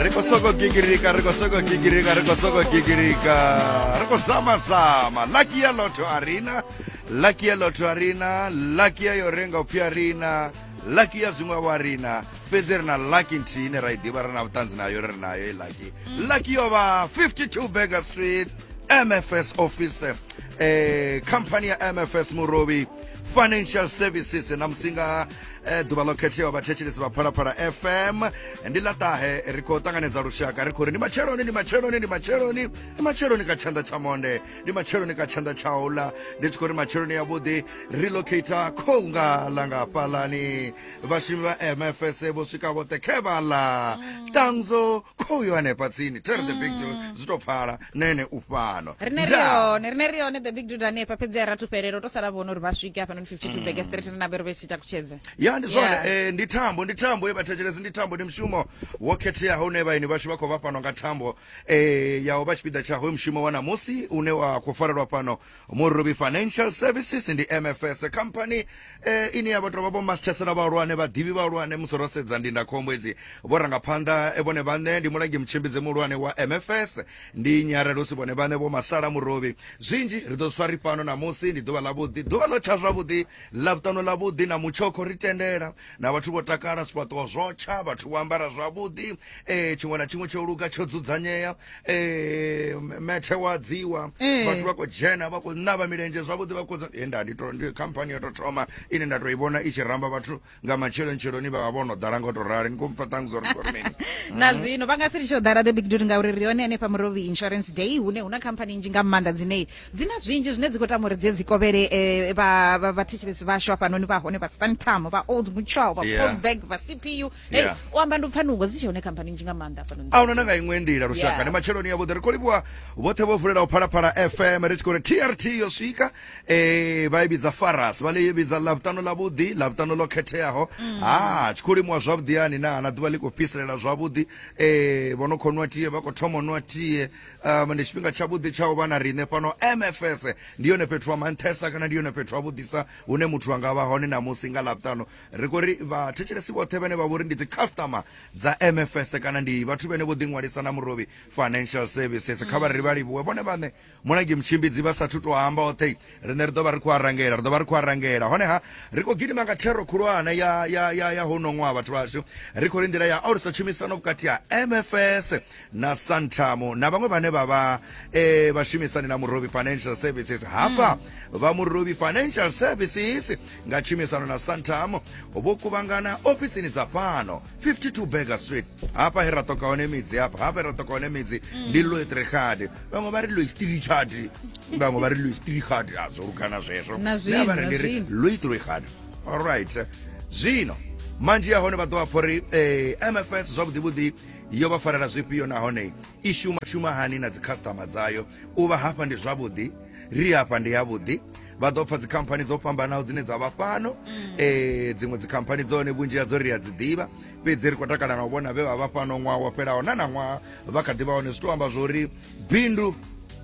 ri khou sokou gigirika ri khou sokou gigirika ri khou sokou gigirika ri khou zama zama laki ya lotho a rina laki ya lotho a rina laki ya yo renga upfi a rina laki ya zwiṅwe wa rina fhedzi ri na laki nthihi ine ra i ḓivha ri na vhuṱanzi nayo ri nayo i laki laki yo vha 52 burger street mfs office eh khamphani ya mfs murobi financial services na musinga eh, ḓuvha ḽo khetheaho vhathetshelesi vha phalaphala fm ndi ḽa ṱahe ri khou ṱanganedza lushaka ri khou ri ndi matsheloni ndi matsheloni ndi matsheloni ndi matsheloni ka tshanḓa tsha monde ndi matsheloni ka tshanḓa tsha uḽa ndi tshi khou ri matsheloni yavhuḓi relocata khou nga ḽa nga fhaḽani vhashumi vha mfs vho swika vhoṱhe khe vha ḽa tanzo khou yo hanefha tsini tere the big zwi tou pfala na ene u fhano rine ri Ndaa. hone rine ri hone the big dude hanefha fhedzi a rathu fhelelo to sala vhona uri vha swike hafha noni 52 bege straight na vhero vhe tshi takutshedze ya ndi zwone Yeah. eh, ndi thambo ndi thambo ye vhathetshelesi ndi thambo ndi mushumo wo khetheaho une vhaeni vhashu vha khou vha fhano nga thambo eh, yaho vha tshipiḓa tsha hoyu mushumo wa ṋamusi une wa khou farelwa fhano murubi financial services ndi mfs company eh, ine ya vha tovha vho masithesela vhahulwane vhaḓivhi vhahulwane musi ro sedza ndindakhombo edzi vhurangaphanḓa eh, vhone vhaṋe ndi mulangi mutshimbidzi muhulwane wa mfs ndi nyarelusi vhone vhaṋe vho masala murobi zwinzhi ri ḓo swa ri fhano namusi ndi ḓuvha ḽavhuḓi ḓuvha ḽo tsha zwavhuḓi ḽa vhuṱano ḽavhuḓi na mutshokho ri tendela na vhathu vho takala zwifhaṱuwo zwo tsha vhathu vho ambara zwavhuḓi eh tshiṅwe na tshiṅwe tsho luga tsho dzudzanyea eh methe wa dziwa eh. vhathu vha khou dzhena vha khou ṋavha milenzhe zwavhuḓi vha khou eh, nda ndi to ndi company yo to thoma ine nda to i vhona i tshi ramba vhathu nga matshelo ntshelo ni vha vha vhono ḓala ngo to rali ni khou mpfa ṱhangu zwo ri khou mini na mhm. zwino vha nga si litsho ḓala the big dude ngauri ri hone hanefha murovi insurance day hune huna company nzhi nga maanḓa dzine dzi na zwinzhi zwine dzi khou tama uri dzi dzi kovhele eh, vha vha- vhathetshelesi vhashu hafhanoni vha hone vha santam vha old mutual vha Yeah. postbank vha cpu hey, Yeah. u amba ndi pfanungo dzi tshe hone khamphani nzhi nga maanḓa hafhanoni a huna na nga iṅwe ndila lushaka Yeah. ndi matshiloni ya vhuḓi ri khou livhuwa vhoṱhe vho vulelaho phalaphala fm ri tshi khou ri trt yo swika eh vha i vhidza faras vha ḽi vhidza ḽavhuṱanu ḽa vhuḓi ḽavhuṱanu ḽo khetheaho ha tshi khou limuwa zwavhuḓi yani na na ḓuvha ḽi khou fhiselela zwavhuḓi eh vho no khou nwa tie vha khou thoma u nwa tie um ndi tshifhinga tshavhuḓi tsha u vha na riṋe fhano mfs ndi yone fhethu ha manthesa kana ndi yone fhethu ha vhuḓisa hune muthu a nga vha hone namusi nga ḽavhuṱanu ri khou ri vhathetshelesi vhoṱhe vhane vha vhori ndi dzi customer dza mfs kana ndi vhathu vhene vho ḓiṅwalisa na murovhi financial services kha vha ri vha livhuwe vhone vhaṋe mulangi mutshimbidzi vha sathu to amba oṱhe rine ri ḓo vha ri khou arangela ri ḓo vha ri khou arangela honeha ri khou gidima nga thero khulwane ya ya ya ya hono ṅwaha vhathu vhashu ri khou ri nḓila ya alusa tshumisano vhukati ha mfs na santamo na vhaṅwe vhane vha vha um vhashumisani na murobi financial services hafha mm. vha murobi financial services nga tshumisano na santamo vho kuvhangana ofisini dza fhano 52 burger sweet hapa he ra toka one midzi hapa hapa ra toka one midzi ndi loe trehadi vamwe va ri loe stilichadi vamwe va ri loe stilihadi a zwo lugana zwezwo Na zwino, Nṋe avhari na ndi ri zwino. loe trehadi allright zwino manzhi ya hone vha ḓo vha pfha uri eh, mfs zwavhuḓivhuḓi yo vha farela zwifhio nahone i shuma shuma hani na dzikhasitama dzayo u vha hafha ndi zwavhuḓi ri hafha ndi yavhuḓi vha ḓo pfa dzikhamphani dzo fhambanaho dzine dza vha fhano um dziṅwe dzikhamphani dzone vhunzhi hadzo ri a dzi ḓivha fhedzi ri khou takala na u vhona vhe vha vha fhano ṅwaha wo fhelaho na na ṅwaha vha kha ḓi vha hone zwi tou amba zwori bindu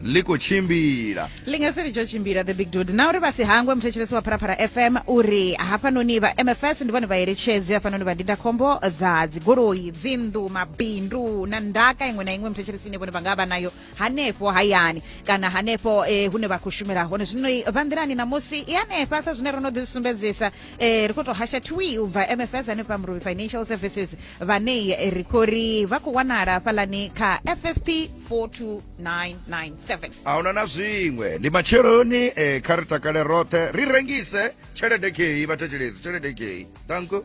ḽi khou tshimbila ḽi nga si litsho tshimbila the big dude na uri vha si hangwe muthetshelesi wa pharapara fm uri hafhanoni vha mfs ndi vhone vhaeletshedzi hafhanoni vha ndindakhombo dza dzigoloi dzinnḓu mabindu na ndaka iṅwe na iṅwe muthetshelesi ine vhone vha nga vha nayo hanefho hayani kana hanefho eh, hune vha khou shumela hone zwino i- vha nḓilani ṋamusi i hanefha sa zwine ro no ḓi sumbedzisa eh, ri khou tou hasha twi u bva mfs hanefha mrubi financial services vhane eh, ri khou ri vha khou wanala fhalani kha fsp 42997 ahuna na zwiṅwe ndi matsheloni eh, kha ri takale roṱhe ri rengise tshelede kei vhathetshelezi tshelede kei danko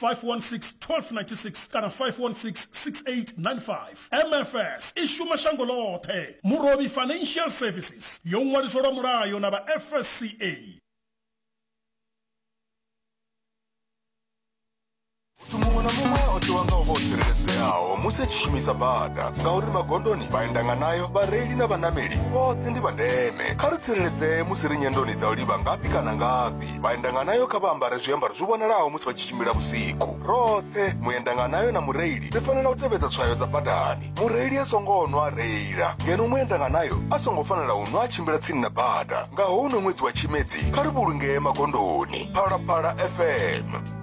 516-1296 kana 516-6895 mfs i shuma shango ḽoṱhe murovhi financial services yo ṅwaliswa lwa mulayo na vha fsca muthu muṅwe na muṅwe o tiwa nga u vha o tsireledzeaho musi a tshi shumisa bada ngauri magondoni vhaendanga nayo vhareili na vhanameli vhoṱhe ndi vha ndeme kha ri tsireledzee musi ri nyendoni dza u livha ngafhi kana ngafhi vhaendanganayo kha vha ambare zwiambaro zwi vhonalaho musi vha tshi tshimbila vhusiku roṱhe muendanganayo na mureili ri fanela u tevhedza tswayo dza badani mureili a songo nwa a reila ngeno muendanganayo a songo fanela u nwa a tshimbila tsini na bada nga houno ṅwedzi wa tshimedzi kha ri vhulungee magondoni phalaphala fm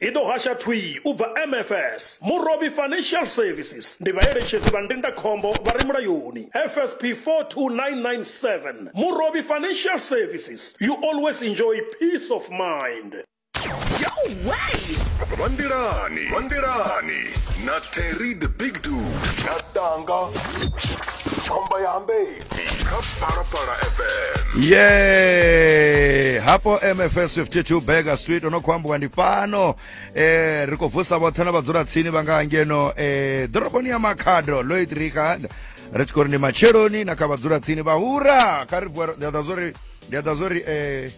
I ḓo hasha thwii u bva MFS, Murovhi Financial Services, ndi vhaeletshedzi vha ndindakhombo vha re mulayoni, FSP 42997, Murovhi Financial Services, you always enjoy peace of mind. Yo way! Vha nḓilani, vha nḓilani na Terry the Big Dude. Tshatanga, khomba ya hambei. kha phalaphala fm ye hapo mfs 52 burger street ono khou ambiwa ndi fhano eh, ri khou vusa vhoṱhe na vhadzula tsini vha nga ngeno eh, ḓoroboni ya makhado loit ricard ri tshi khou ri ndi matsheloni na kha vhadzula tsini vhahura kha ri vuwa ri- ndi a ḓa zwo ri ndi a ḓa zwo ri eh,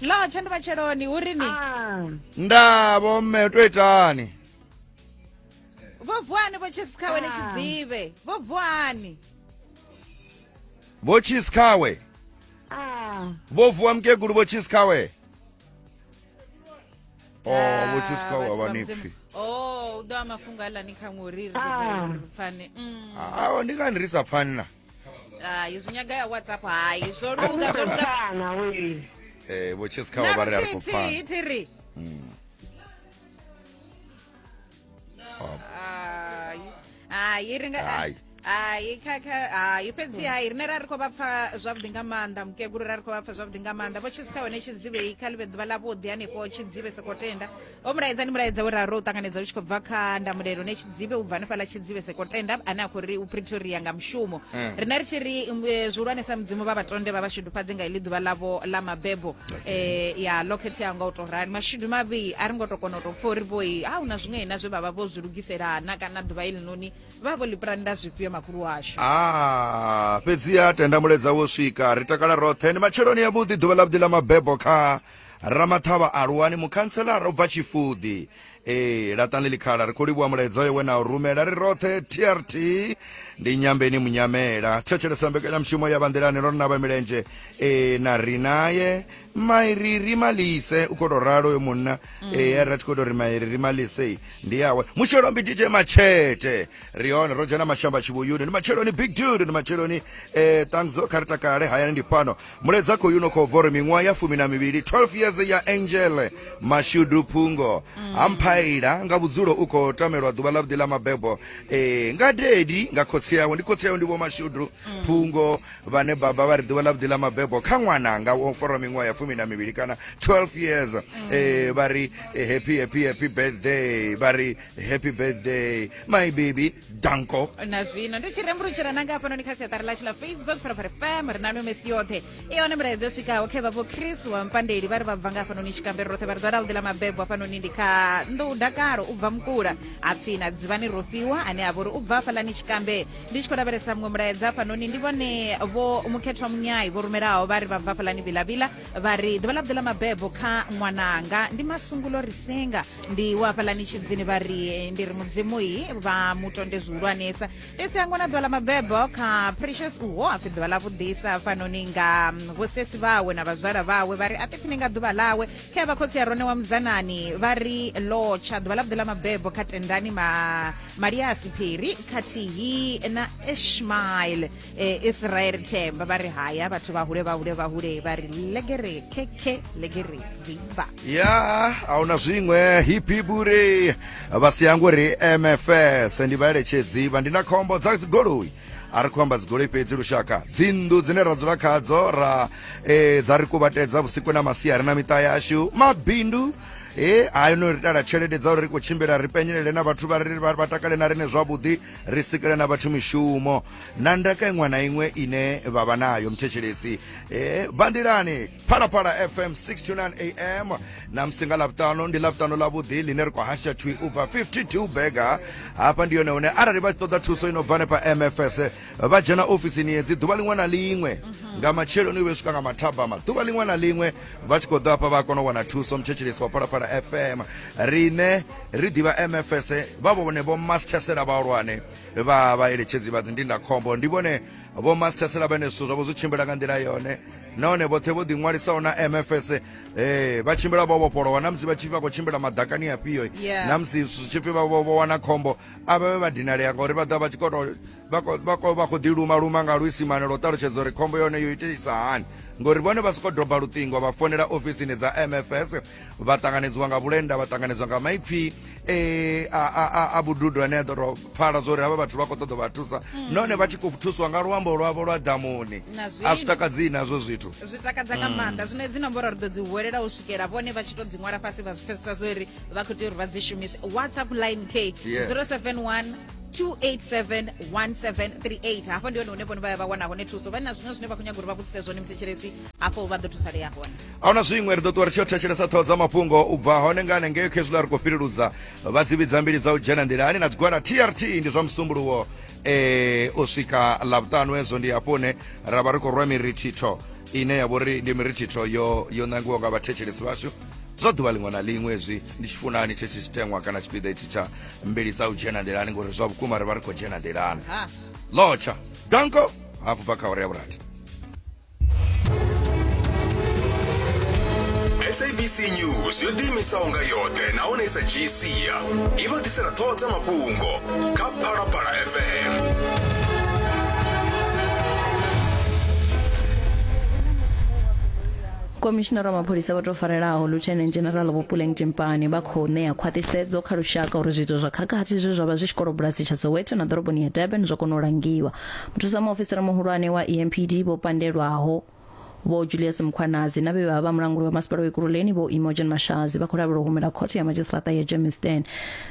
lotshe ndi vhatsheloni hu ri ni Ah, nda vho mme to itani vho vuani vho tshisi khawe ni tshidzivhe vho vuani vho chisi khawe ah. vho vuwa mukegulu vho chisi khawe o Oh, vho chisi khawe a vha ni pfi o u ḓo a mafhungo aḽa ni khaṅwe uri ri Ah. ri pfane Mm. awo ndi ngani ri sa pfani na Ah, izwi nyaga ya whatsapp hayi zwo lunga zwo lunga Kana we. eh vho chess khawa vha ri a ri khou pfana Naluthihi thiri Hai. hayi ri nga Hayi. hayi kha kha hayi fhedzi hayi rine ra ri khou vha pfa zwavhuḓi nga maanḓa mukegulu ra ri khou vha pfa zwavhuḓi nga maanḓa vho tshisi kha hone tshidzivhei kha ḽi vhe ḓuvha ḽavhuḓi hanefho tshidzivhe sokotenda vho mulaedza ndi mulaedza wo raro u ṱanganedza u tshi khou bva kha ndamulelo ne tshidzibe u bva hanefhaḽa tshidzibe sekotenda ane a khou ri u pretoria nga mushumo Eh. rine ri tshi ri um, eh, zwihulwane sa mudzimu vha vhatonde vha vha shudufhadze nga iḽi ḓuvha ḽavho ḽa mabebo eh, ya ḽo khetheaho nga u tou rali mashudu mavhi a ri ngo tou kona u tou pfa uri vhoi a hu na zwiṅwe na zwe vha vha vho zwi lugiselana kana ḓuvha iḽi noni vha vho ḽi pulanda zwifhio makhulu washu Ah, fhedziha tenda muledza wo swika ri takala roṱhe ni matsheloni ya vhuḓi ḓuvha ḽa vhuḓi ḽa mabebo kha ramaṱhavha aluwani mukhantselara u bva tshifuḓi ee laṱani ḽikhala ri khou livhuwa mulaedza oyo we na u rumela ri roṱhe trt ndi nyambeni munyamela thetshelesa mbekanyamushumo ya vhanḓilani ro rina vha milenzhe ee na ri naye mairi ri malise u khou tou ralo yo munna ee a ri a tshi khou tou ri mairi ri malise ndi yawe mushelombi dj matshete ri hone ro dzhena mashamba tshivhuyuni ndi matsheloni big dude ndi matsheloni eh, tanzo kha ri takale hayani ndi fhano muledza khou yuno khou vori miṅwaha ya fumi na mivhili 12 years ya angel mashudu phungo amphaila nga vhudzulo u khou tamelwa ḓuvha ḽa vhuḓi ḽa mabebo eh, nga dedi nga khotsi yawe ndi khotsi yawe ndi vho mashudu phungo vhane baba vha ri ḓuvha ḽa vhuḓi ḽa mabebo kha ṅwana nga wo fora miṅwaha ya fumi na mivhili kana 12 years eh, vha ri eh, happy happy happy birthday vha ri happy birthday my baby danko na zwino ndi tshi rembulutshela nanga hafhanoni kha siaṱari ḽashu ḽa facebook phalaphala fm ri na no mesi yoṱhe i hone milaedza yo swikaho khe vhavho chris wa mpandeli vha ri vha bva nga hafhanoni tshikambere roṱhe vha ri dzadavhuḓi ḽa mabebo hafhanoni ndi kha nḓou dakalo u bva mukula hapfi na dzivhani rofhiwa ane a vha uri u bva hafhaḽani tshikambe ndi tshi khou lavhelesa muṅwe mulaedza hafhanoni ndi vhone vho mukhethwa munyai vho rumelaho vha ri vha bva hafhaḽani vilavila vha ri ḓuvha ḽa vhuḓi ḽa mabebo kha ṅwananga ndi masungulo ri singa ndi wa hafhaḽani tshidzini vha ri ndi ri mudzimu yi vha mutonde zwihulwanesa fhedzi a ṅwana ḓuvha ḽa mabebo kha precious uho a pfi ḓuvha ḽa vhuḓisa fanoni nga vhosesi vhawe na vhazwala vhawe vha ri a ṱiphini nga ḓuvha ḽawe kha ya vhakhotsi ya rone wa mudzanani vha ri lotsha ḓuvha ḽa vhuḓi ḽa mabebo kha tendani ma maliasi phiri khathihi na ishmael eh, e sraere themba ba re haya batho ba hule ba hule ba hule ba re legere keke legere ziba ya ahuna zwiṅwe hipiburi vha si yangu ri mfs ndi vha eletshedzi vha ndi na khombo dza dzigoloi a ri khou amba dzigoloi fhedzi lushaka dzinnḓu dzine ra dzula khadzo ra eh, dza ri kuvhatedza vhusiku na masiari na miṱa yashu mabindu e hayo no ri tala tshelede dza uri ri khou tshimbila ri penyelele na vhathu vha ri vha vha takale na rine zwavhuḓi ri sikele na vhathu mishumo na ndaka iṅwe na iṅwe ine vha vha nayo mthetshelesi eh, bandelani phalaphala fm 629 am na musi nga lavhuṱanu ndi lavhuṱanu lavhuḓi line ri khou hasha twi u bva 52 bega hafha ndi yone hune arali vha tshi ṱoḓa thuso ino bva nepa mfs vha dzhena ofisini yedzi ḓuvha liṅwe na liṅwe nga matsheloni u vhe swika nga mathabama ḓuvha liṅwe na liṅwe vha tshi khou ḓo hafha vha kona u wana thuso mthetshelesi wa phalaphala fm rine ri ḓivha mfs vha vhone vho masthesela vhahulwane vha vhaeletshedzi vha dzindindakhombo ndi vhone vho masithesela vhene zwithu zwavho zwi tshimbila nga nḓila yone nahone vhoṱhe vho ḓiṅwalisaho na mfs eh, vha tshimbila vho vhofholowa na musi vha tshi vha khou tshimbila madakani afhio eh. Yeah. na musi zwitshipfi vha vho vho wana khombo a vha vhe vha dinalea ngauri vha ḓa vha tshi koto vha khou- vha khou- vha khou ḓiluma luma nga luisimane lwo ṱalutshedza uri khombo yone yo itisa hani ngori vhone vha sokou doba luṱingo vha fonela ofisini dza mfs vha ṱanganedziwa nga vhulenda vha ṱanganedzwa nga maipfi eh, a, a, a, a vhududo ane a ḓo tou pfala zwa uri havha vhathu vha khou ṱoḓa vha thusa nahone vha tshi khou thuswa nga luambo lwavho lwa ḓamuni Na zwino. a zwi takadzii nazwo zwithu zwi takadza nga maanḓa zwino hedzi nomboro ri ḓo dzi huwelela u swikela vhone vha tshi to dzi ṅwala fhasi vha zwi pfesesa zwo ri vha khou tea uri vha dzi shumise whatsapp line k Yeah. 071 287 1738 hafho ndi hone hune vhone vha ya vha wana hone thuso vha na zwiṅwe zwine vha khou nyaga uri vha vhudzise zwone muthetshelesi hafho vha ḓo thusalea hone a huna zwiṅwe ri ḓo ṱuwa ri tshi yo thetshelesa ṱhoho dza mafhungo u bva hone nga hanengei khezwiḽa ri khou fhileludza vha dzi vhidza mbili dza u dzhena nḓilani na dzigwada trt ndi zwa musumbuluwo e u swika ḽavhuṱanu hezwo ndi hafho hune ra vha ri khou rwa mirithitho ine ya vhori ndi mirithitho yo yo nangiwa nga vhathetshelesi vhashu zwa ḓuvha ḽiṅwe na ḽiṅwe hezwi ndi tshi funani tshetsho tshiteṅwa kana tshipiḓa itshi tsha mbili dza u dzhena nḓilani ngori zwa vhukuma ri vha ri khou dzhena nḓilani lotsha danko hafu bva kha uri ya vhurathi sabc news yo ḓiimisaho nga yoṱhe nahone i sa dzhii sia i vha ḓisela ṱhoho dza mafhungo kha phalaphala fm khomishinara wa mapholisa vha tou farelaho lieutenant general vhopuleng timpani vha khou ṋea khwaṱhisedzo kha lushaka uri zwiito zwa khakhathi zwe zwa vha zwi tshikolobulasi tsha soweto na ḓoroboni ya durban zwo kona u langiwa muthusa muofisiri muhulwane wa empd vho pandelwaho vho julius mkhwanazi na vhe vha vha mulanguli wa masipala wa ikululeni vho imogen mashazi vha khou lavhelwa u humela khothe ya madzhisiṱaraṱa ya germiston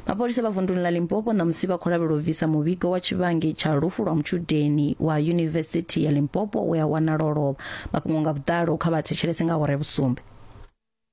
mapholisa vha vunduni ḽa limpopo ṋamusi vha khou lavhelwa u bvisa muvhigo wa tshivhangi tsha lufu lwa mutshudeni wa yunivesithi ya limpopo we a wanala o lovha mafhungo nga vhuḓalo kha vha thetshelese nga awara ya vhusumbe